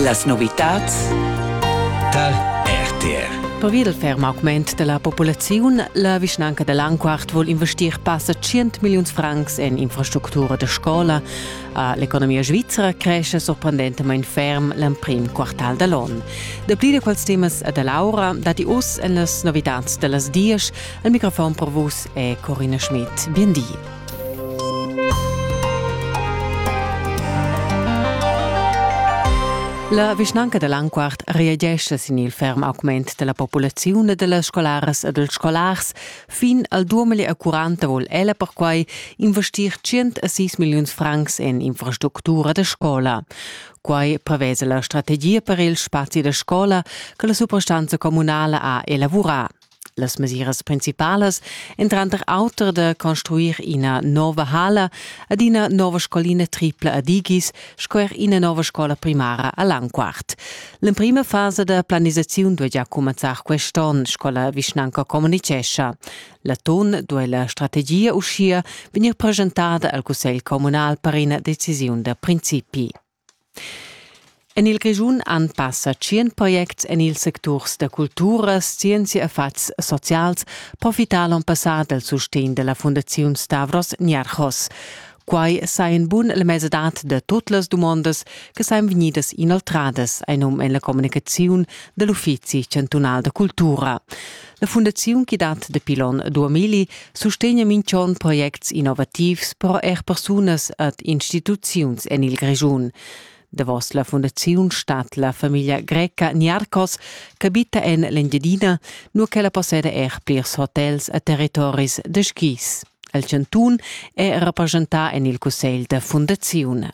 Las novitads tar RTR. Pervi dal ferm augment da la populaziun, la vischnanca da Lanquart vul investir passa 100 milliuns francs en infrastructura da scola. A l'economia svizra cresce sorprendentamain ferm l'emprim quartal da l'on. Dapli da quels temas da Laura datti oz en las novitads da las dies. Al microfon per vus è Corina Schmidt. Bien di. La vischnanca da Lanquart reagescha sin il ferm augment della populaziun e dellas scolaras e dels scolars. Fin al 2040 vol ella perquai investir 106 milliuns francs en infrastructura da scola. Quai prevesa la strategia per il spazi da scola che la suprastanza comunala ha elavorà. Las mesiras principalas èn tranter auter da construir ina nova hala ad ina nova scolina tripla ad Igis sco er ina nova scola primara a Langquart. L'emprima fasa da planisaziun duaja cumenzar quest onn, sco la vischnanca communitgescha. L'atun duai la strategia uschia vegnir preschentada al cussegl communal per ina decisiun da principi. En il Grischun han passa tschient projects en ils secturs da cultura, scienzia e fatgs socials profità l'onn passà dal sustegn da la Fundaziun Stavros Niarchos. Quai sai in bun la mesadad da tut las dumondas che sain vegnidas inoltradas, ein um en la communicaziun dell'Uffizi chantunal da cultura. La fundaziun chi dat dapi l'on 2000 sustegna minch'on projects innovativs però eir persunas ad instituziuns en il Grischun. Davos la fundaziun stat la famiglia greca Niarcos, ch'abita en l'Engiadina, nur ch'ella posseda er plirs hotels a territoris da skis. El chantun è rappresentà en il cussegl da fundaziun.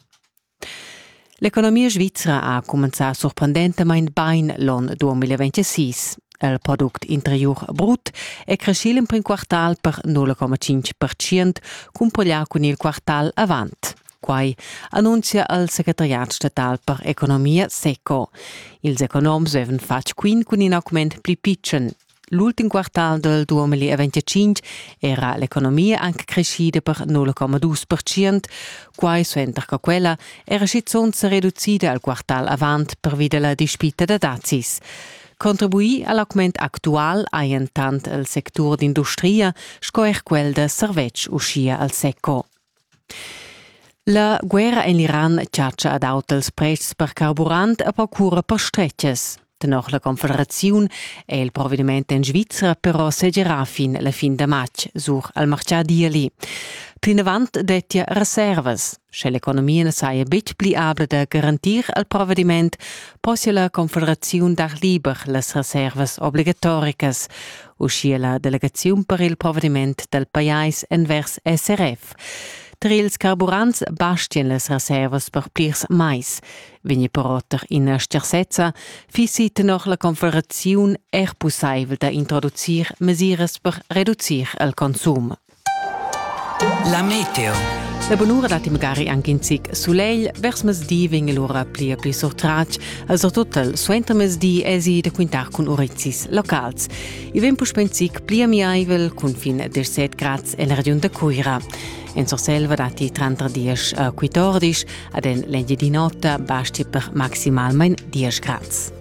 L'economia svizra ha cumenzà surprendentamain bain l'onn 2026. Il product interiur brut è creschì l'emprim quartal per 0,5%, cumpoglià cun il quartal avant. Quai annunzia il secretariat statal per economia SECO. Ils economs avevan fatg quint cun in augment pli pitschen. L'ultim quartal del 2025 era l'economia anche crescida per 0,2%, quai suenter che quella era schizunt se reducida al quartal avant pervi della dispita da dazis. Contribuì al augment actual hajan tant il sectur d'industria sco er quel da servetsch uschia al SECO. La guerra en l'Iran chatscha ad auters pretschs per carburant e per cura per stretgas. Tenor la Confederaziun è il provediment en Svizra però segerà fin la fin da matg sur al martgà d'ieli. Plinavant dettia reservas. Sche l'economia na saja betg pli abla da garantir al provediment, possia la Confederaziun dar liber las reservas obligatoricas, uschia la delegaziun per il provediment dal pajais envers SRF. Tar ils carburants bastian las reservas per plirs mais. Vegni però tar ina scharsezza, fissi tenor la Confederaziun er pussaivel da introducir mesiras per reducir il consum. La meteo. La bunura dat magari anche in zic sulegl. Vers mezdi vegn l'ora pli e pli surtratg. Also total suenter mezdi esi da quintar cun urezis locals. I vegn puspè in zic pli amiaivel cun fin 17 grads en la regiun da Cuira. En Surselva dati 30 a 14, ad en l'engi di notte basti per maximalmain 10 grads.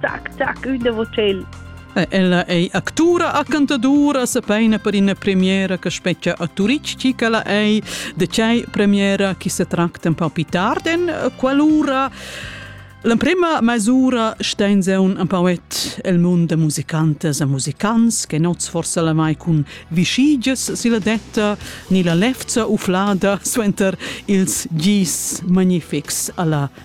Tac, tac, ün davo tschel. Ella ei actura a cantadura, sepeina per ina premiera che specchia a Turitg, chi che la ei, de cei premiera chi se tracta un po più tardi in qualora. L'emprema mesura stein se un poet el mund de musicantes e musicants che nots forse la mai cun vischiges si la detta ni la lefza uflada suenter ils gis magnifics alla